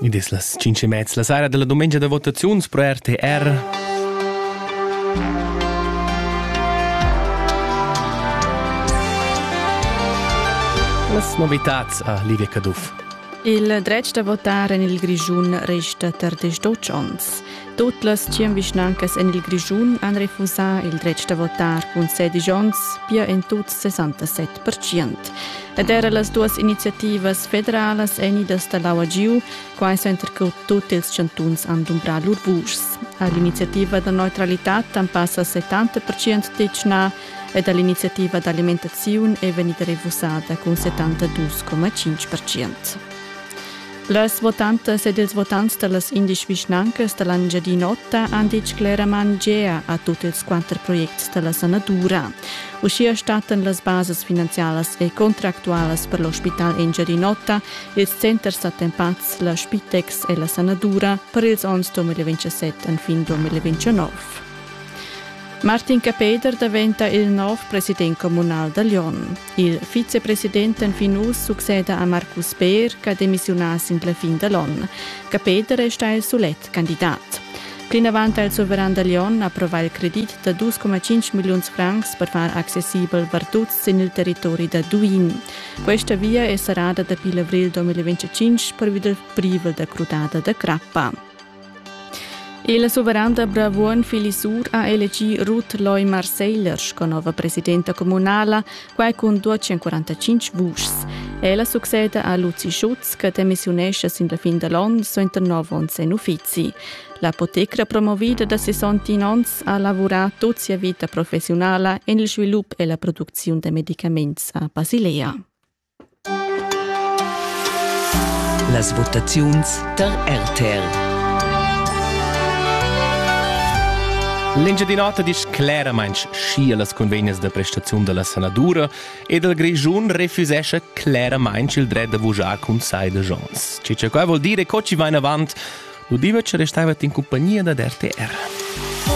Id es las tschinch e mez la saira da la dumengia da votaziuns pro RTR. Las novitats a Livia Caduff. Il dretg da votar en il Grischun resta tar desch onns. Tut las tschient vischnancas en il Grischun han refusà il dretg da votar cun sedisch onns, pia en tut 67 Ed era las duas iniziativas federalas èn idas da l'aua giu, quai suenter che tut ils chantuns han dumbrà lur vuschs. A l'iniziativa da neutralitad han passa 70% tetgnà ed a l'iniziativa d'alimentaziun è vegnida refusada cun 72,5%. Las votantas ed ils votants da las indesch vischnancas da l'Engiadin'Ota han ditg cleramain gea a tut ils quatter projects da la sanadura. Uschia stattan las basas finanzialas e contractualas per l'ospital Engiadin'Ota, ils centers attempads, la Spitex e la sanadura per ils onns 2027 enfin 2029. Martin Capeder daventa il nov president communal da Lyon. Il vicepresident fin uss succeda a Markus Beer che ha demissiunà sin la fin da l'onn. Che Peter resta il sulet candidat. Plinavant ha il suveran da Lyon approvà il credit da 2,5 milliuns francs per far accessibel Bartuz sin il territori da Duin. Questa via è serrada dapi l'avrigl 2025 pervi dal privel da crudada da crappa. Il suveran da Bravuogn Fili Sur ha elegì Ruth Loy Marseiller sco nova presidenta communala, quai cun 245 vuschs. Ella succeda a Luzi Schutz che demissiunescha sin la fin da l'onn suenter nov onns en uffizi. L'apotecra promovida da 61 onns ha lavurà tut sia vita professiunala en il svilup e la producziun da medicaments a Basilea. Las votaziuns tar RTR. L'Engiadin'Ota disch claramaing schi a las convegnas da prestaziun da la sanadura ed il Grischun refusescha claramaing il dret da vujar cun sai da Jons. Ci che qua vuol dire co ci va in avant, lu diva che restaivat in compagnia dad RTR.